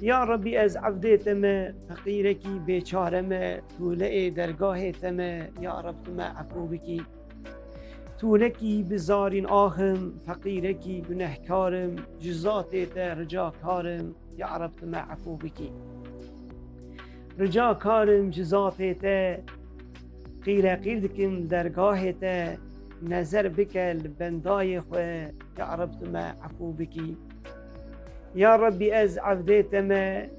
Ya Rabbî ez evdê te me feqîrekî bêçare me tûleê dergahê te me ya Rabb tu me efû bikî. Tûlekî bi zarîn axim feqîrekî gunehkarim ji zatê te rica karim ya Rabb tu me efû bikî. Rica karim ji zatê te qîreqîr dikim dergahê te nezer bike li bendayê xwe ya Rabb tu me efû bikî. Ya Rabbî ez evdê te me,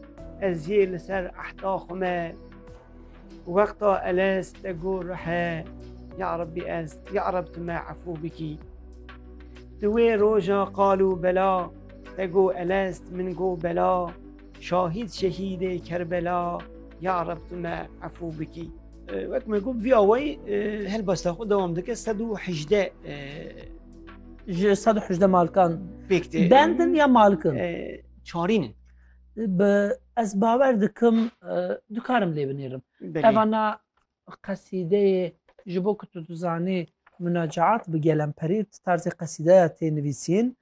ez jî li ser ehda xwe me. Wexta elez te got rihe, ya Rabbî ez, ya Reb tu me efû bikî. Di wê roja qal û bela te got elez min got bela, şahîd şehîdê Kerbela, ya Reb tu me efû bikî. Wek me got vî awayî helbesta xwe dewam dike sed û hejdeh Ji sed û hejdeh malkan pêk tê bendin ya malkin çarîn in. Bi ez bawer dikim dikarim lê binêrim. Evana qesîdeyê ji bo ku tu dizanî munacaat bi gelemperî tarzê qesîdeya tê nivîsîn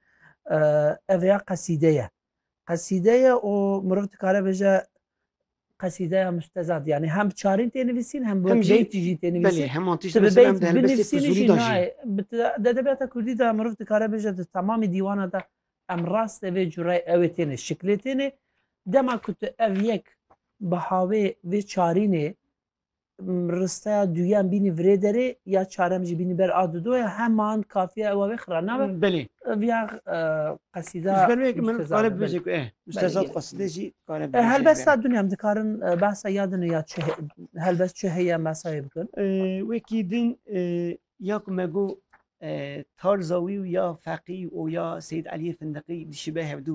ev ya qesîde ye. Qesîde ye û mirov dikare bêje qesîdeya mustezad yanî hem bi çarîn tê nivîsîn hem bi Hem wek jî- beyti jî tê nivîsîn. Belê heman tişt Ti bi mesela beyt em di helbestê binivîsînî Fizûlî jî da jî. nayê. Bi te- Di edebiyata Kurdî de mirov dikare bêje di temamî dîwana de em raste vê cureyê ewê têne şiklê têne. Dema ku tu ev yek bi havê vê çarînê Risteya duyan bînî virê derê ya çarem jî bînî ber a dido ya heman kafiya ewa wê xira nabe. Belê. Viya qesîda. Berwek min qare bibêje ku e müstezat qesîde jî qare bibêje. Helbesta dunyam dikarin behsa ya dine ya çi helbes çi heye mesayê bikin. Wekî din ya ku me got tarza wî û ya feqî û ya Seyîd Elîyê Findiqî dişibe hevdû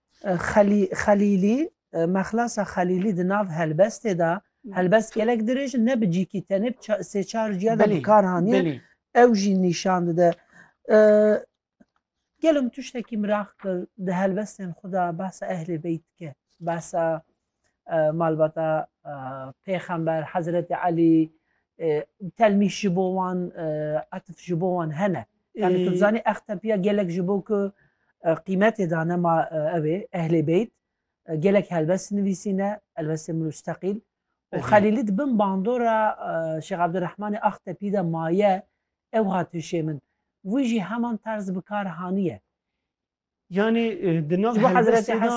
Xelî Xelîlî, Mexlasa Xelîlî di nav helbestê de, helbest gelek dirêj in, ne bi cîkî tenê bi sê çar ciya de bi kar haniye, ew jî nîşan dide. Gelo min tiştekî miraq kir, di helbestên xwe de behsa Ehlê Beyt dike, behsa malbata Pêxember Hezretê Elî telmîh ji bo wan etif ji bo wan hene. Yani tu zanî ex tepiya gelek ji bo ku qîmetê dane ma ew ê ehlê beyt gelek helbest nivîsîne elbestê musteqîl û xelîlî di bin bandora Şêx Abdurehmanê ax tepî de maye ew hat hişê min. Wî jî heman terz bi kar haniye. Yanî di nav helbestê de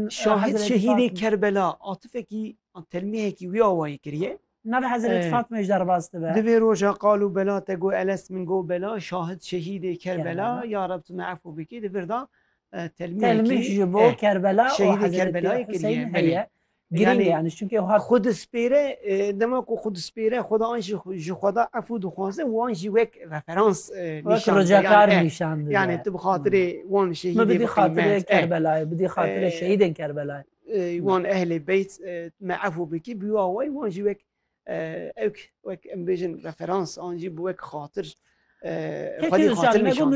şahid şehîdê Kerbela atifekî an telmîhekî wî awayî kiriye. Navê Hezretî Fatmeyê jî derbas dibe. Di vê roja qal û bela te got Elest min got bela şahid şehîdê Kerbela ya Reb tu me efû bikî di vir de telmîhekî telmîh ji bo Kerbela û Hezretî Huseyîn heye. Girîng e yanî çimkî ew hat. Xwe dispêre, dema ku xwe dispêre xwe da an jî ji xwe da efû dixwaze wan jî wek referans nîşan dide. Rojekar nîşan dide. Yanî tu bi xatirê wan şehîdê bidî qîmet. Min bidî xatirê Kerbelayê, bidî xatirê şehîdên Kerbelayê. Wan ehlê beyt me efû bikî bûya wê wan jî wek ewk wek em bêjin referans an jî bi wek xatir xwedî xatir nîşan dide.